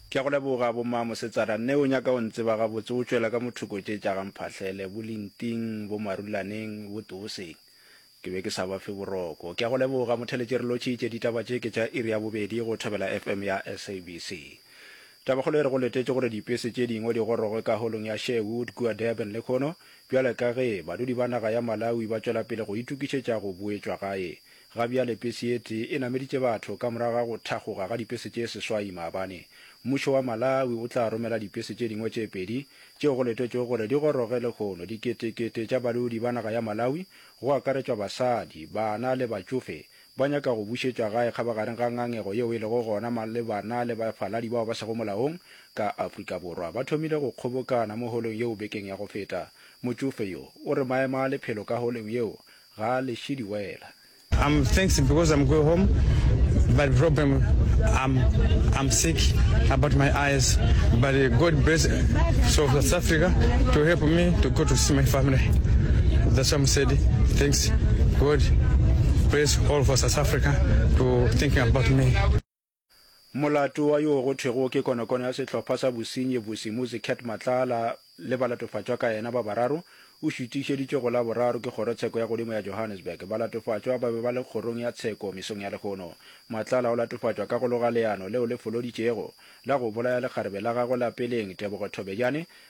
Ke a go leboga, Bomma Mosetsana. Nne o nyaka o ntseba gabotse, o tšwela ka mothoko tše tša ga Mphahlele, bo Linting, bo Marulaneng, bo Tooseng. Ke be ke sa ba fe boroko. Ke a go leboga, Motheletše. Re lotšhitše ditaba tše ke tša iri ya bobedi go Thobela FM ya SABC. Tabakgolo e re go letetše gore dipese tše dingwe di goroge ka holong ya Sherwood kua Durban lekhono bjale ka ge badudi ba naga ya Malawi ba tšwela pele go itokišetša go boetšwa gae Ga bjale pese ye tee e nameditše batho ka morago ga go thakgoga ga dipese tše seswai maabane. Mmušo wa Malawi o tla romela dipese tše dingwe tše pedi tšeo go letetšwego gore di goroge lehono diketekete tša balodi ba naga ya Malawi, go akaretšwa basadi, bana le batšofe, ba nyaka go bušetšwa gae kgabagareng ga ngangego yeo e lego gona malebana le bafaladi bao ba sego molaong ka Afrika Borwa. Ba thomile go kgobokana mo holong yeo bekeng ya go feta. Motšofe yo o re maemo a lephelo ka holong yeo Ga a leše diwela. I'm thanks because I'm go home but problem I'm I'm sick about my eyes but God bless so South Africa to help me to go to see my family that's why I'm said thanks God bless all for South Africa to thinking about me Molato wa yoo go thwego ke konokono ya sehlopha sa bosenyi Bosimuzi Cat Matlala le balatofatšwa ka yena ba bararo o šutišeditšwe go Laboraro ke Kgorotsheko ya Godimo ya Johannesburg. Balatofatšwa ba be ba le kgorong ya tsheko mesong ya lehono. Matlala o latofatšwa ka go loga leano leo le foloditšego la go bolaya lekgarebe la gagwe la peleng Tebogo Thobejane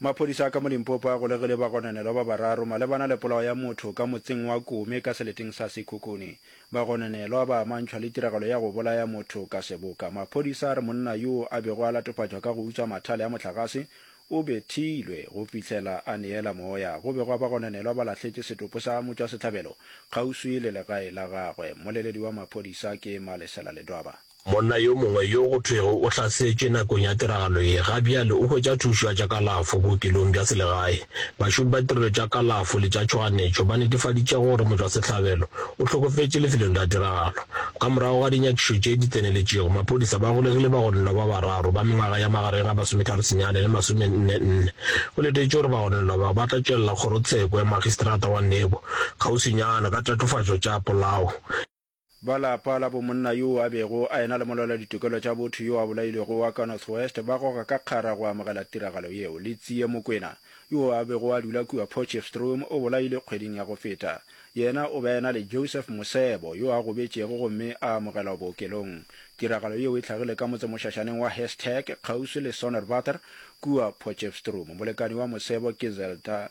Maphodisa a ka mo Limpopo a golegile bagononelwa ba bararo malebana le polao ya motho ka motseng wa Kome ka seleteng sa Sekhukhune. Bagononelwa ba amantšhwa le tiragalo ya go bolaya motho ka seboka. Maphodisa a re monna yoo a bego a latofatšwa ka go utswa mathale a mohlagase o bethilwe go fihlela a neela moya. Go begwa bagononelwa ba lahletše setopo sa motšwasehlabelo kgauswi le legae la gagwe. Mmoleledi wa maphodisa ke Malesela Ledwaba. Monna yo mongwe yo go thwego o hlasetšwe nakong ya tiragalo ye ga bjale o hwetša thušo ya tša kalafo bookelong bja selegae. Bašomi ba ditirelo tša kalafo le tša tšhoganetšo ba netefaditše gore motšwasehlabelo o hlokofetše lefelong la tiragalo. Ka morago ga dinyakišo tše di tseneletšego, maphodisa ba golegile bagononelwa ba bararo ba mengwaga ya magareng ga masometharo senyane le masomenne nne. Go letetšwe gore bagononelwa bao ba tla tšwelela kgorotsheko ya Magistrata wa Nebo kgauswinyana ka tatofatšo tša polao. Ba lapa la bomonna yoo a bego a ena le molwela-ditokelo tša botho yo a bolailwego wa ka North West ba goga ka kgara go amogela tiragalo yeo. Litsie Mokwena, yoo a bego a dula kua Potchefstroom, o bolailwe kgweding ya go feta. Yena o be a ena le Joseph Mosebo, yo a gobetšego gomme a amogelwa bookelong. Tiragalo yeo e hlagile ka motsemošašaneng wa Herstek, kgauswi le Sonderwater, kua Potchefstroom. Molekani wa Mosebo ke Zelda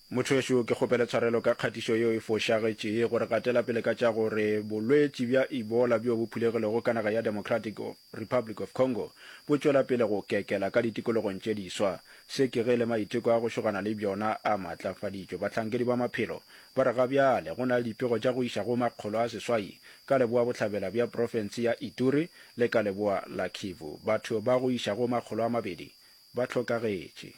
Mothowešu, ke kgopele tshwarelo ka kgatišo yeo e fošagetše ye, gore gatela pele ka tša gore bolwetši bja Ebola bjo bo phulegilego ka naga ya Democratic of Republic of Congo bo tšwela pele go kekela ka ditikologong tše diswa. Se ke ge le maiteko a go šogana le bjona a maatlafaditšwe. Bahlankedi ba maphelo ba re ga bjale go na le dipego tša go iša go makgolo a seswai ka leboa-bohlabela bja profense ya Ituri le ka leboa la Kivu. Batho ba go iša go makgolo a mabedi ba hlokagetše.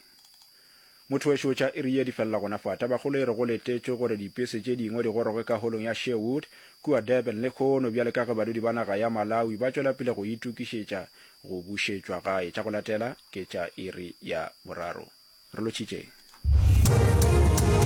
Motho wešo tša iri ye di felela gona fa. Tabakgolo e re go letetšwe gore dipese tše dingwe di goroge ka holong ya Sherwood kua Durban lehono bjale ka ge badudi ba naga ya Malawi ba tšwela pele go itukišetša go bušetšwa gae. Tša go latela ke tša iri ya boraro. Re lotšhitšeng.